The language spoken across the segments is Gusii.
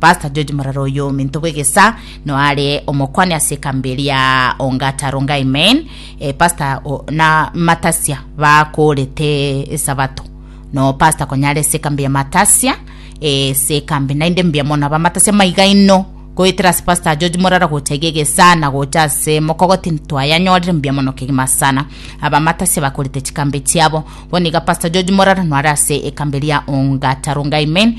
Pastor George Morara oyo ominto bw'egesaa no are omokwane ase ekambi eria Ongata Rongai Main eh, Pastor o- na Matasia bakorete esabato no Pastor konyare ase ekambi ya Matasia eh, ase ekambi naende mbuya mono abamatasia maiga ino goetera ase Pastor George Morara gocha iga egesaa na gocha ase mokogoti ntwayanyorire mbuya mono kegima sana abamatasia bakorete chikambi chiabo bono iga Pastor George Morara no are ase ekambi eria Ongata Rongai Main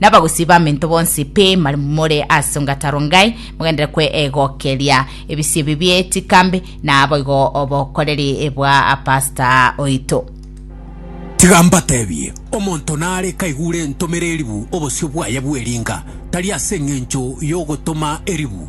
Nabagusii bamento bonsi pi mari more as'nga taro ngai, mogendere kwe egokeria ebisio ebi bie chikambi, na boigo obokoreri bwa pasta oito. Tiga mbatebie, omonto nare kaigure entomere eribu obosio bwaye bw'eringa, tari as'engencho y'ogotoma eribu,